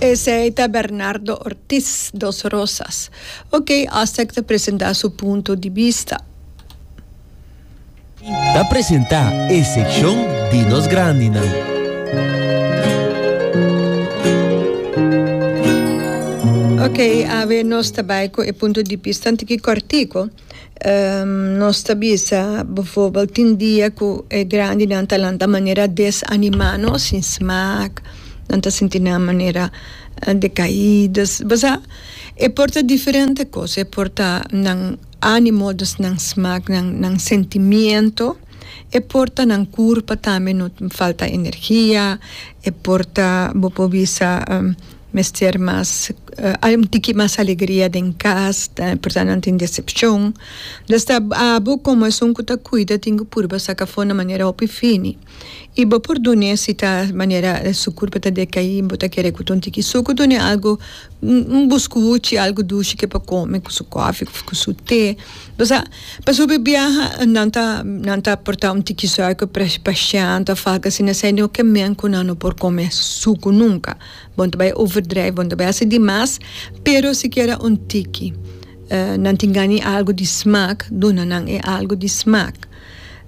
Esey ta Bernardo Ortiz, Dos Rosas. Ok, Astec ta presenta su punto di bista. Ta presenta e seccion di nos grandinan. Ok, awe nos ta bay cu e punto di bistan tin ki cortico. nos ta bisa befobel tin dia ku e grandinan ta lanta manera desanimá nos sin smak, nan ta sinti nan manera dekaídas. Basa e por ta diferente kos, e por ta nan ánimo dus nan smak, nan nan sentimiento, e por ta nan kurpa tambe no falta energia, e por ta bo por bisa. Mester mas un tiki mas alegria den cas porta nan tin decepcion lo sta abo como esun cu ta cuida tin cu purba saca afo na manera hopi fini y bo por dun'e si ta manera su curpa ta decaí bo ta kere cu ta un tiki su cu dun'e algo un buscuchi algo dushi ke pa come cu su coffee of cu su te bosa pasobra biaha nan ta nan ta porta un tiki suaker pa shang ta falta si na esei no ke men cu nan no por come sucu nunca. Bon ta bai overdrijf bon ta bai hasi di mas pero sikiera un tiki nan tin gani algu di smak duna nan e algu di smak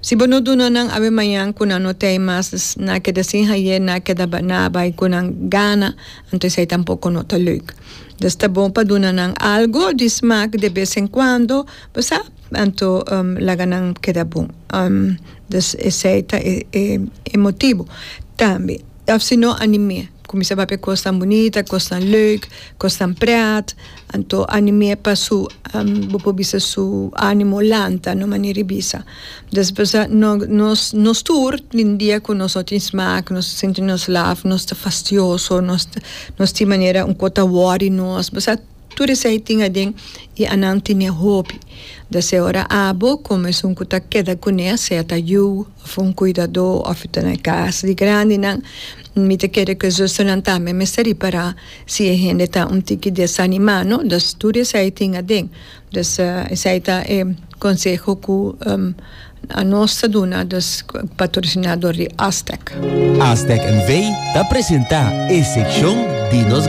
si bo no duna nan awe mañan ku nan no ta ei mas na keda sin haye na keda na bai ku nan gana anto esei tampoko no ta leuk dus ta bon pa duna nan algu di smak de bes en kuando bo sa anto laga nan keda bon dus esei ta e motibu tambe. Of si no anim'é kuminsá papia kosnan bunita, kosnan leuk, kosnan prèt. Anto anim'é pa su bo por bisa su ánimo lanta na un manera di bisa. Des por esa nos nos tur tin dia ku nos no tin smak, nos sinti nos laf, nos ta fastioso, nos tin manera un kos ta wòri nos. Tur esei tin aden i a nan tine hopi deseo. Ora abo con esun cu ta keda cu ne, sea ta yu of un cuidadó of ta na e cas di grandinan, mi ta kere cu e zusternan tambe mester ripara si e hende ta un tiki desanima, no? Dus tur esei tin aden. Dus esei ta e conseho cu anos ta duna, dus patrocina dor di Aztec. Aztec NV ta presenta e seccion di nos.